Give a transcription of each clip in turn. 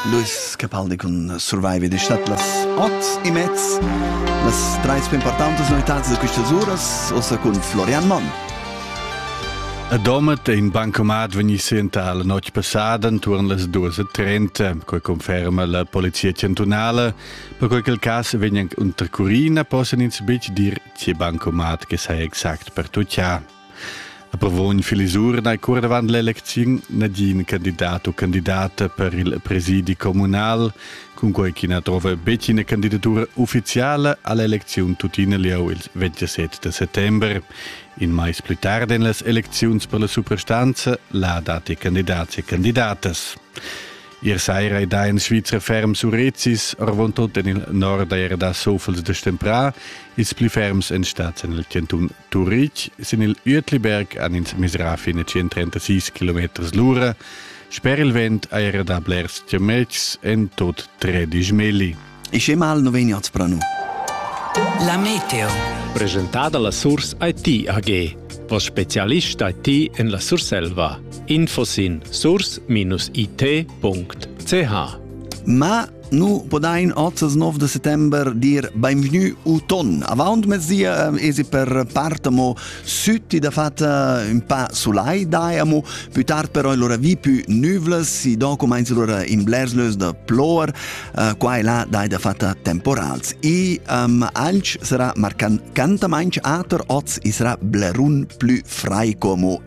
Luis Capaldi cun Survive di stat las ots e mez las treis più importanti novità da queste uras ossa con Florian Monn. A Domat è in bancomat vegni sienta la notte passada intorno las 2.30, quai conferma la Polizia Chantunale. Per quel il caso vegni anche unter Curina possen ins bitg dir che bancomat che sa exact per tucciar. Approvogn Filisur nei cur davant l'elecziun nagin candidat u candidata per il presidi communal, cunquei ch'ina trova betg ina candidatura ufficiala all'elecziun tuttina liau il 27 de settember. In mais pli tard en las elecziuns per la suprastanza la dati candidats e candidatas. Ier saira ei da in Svizra ferm surrecis, orvontot en il nord era da sofels de stemprà, ils pli ferms en stads en il cantun Turitg sin il Uetliberg han ins misrà fin a 136 km l'ura. Sper il vent ha era dà blers chametgs, en tut tredisch meli. E che mal no vegni at spranu? La meteo. Presentada la Surs IT AG. Voss specialist IT en la Surselva. Info sin surs-it.ch Ma Nu podain ozzas 9 de settember dir benvenu uton. Avaunt mezia ehm, esi per part amo sütti da fatta un pa sulai dai amo, più tard però allora vi più nüvles, si do comenz allora in blerslös da plor, uh, qua e là dai da fatta temporals. I um, alch sarà marcan cantamainch ater oz isra blerun plü frai como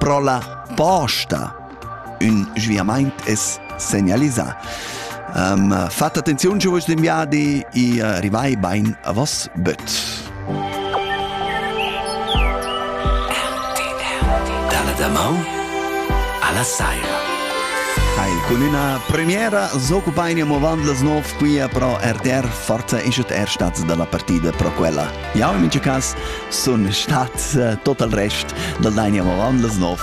Pro la posta ün sviamaint es segnalisà. Um, fat attenziun, giuvens d'in viadi, i uh, rivai bain a vos böt. Dalla damau alla saira. Hai cun üna premiera s'occupain amo avant las 9 qui pro RTR Forza ischet er stats da la partida pro quella Jau in mintga cas sun stat uh, tot al rest dal Dania Moran las nov.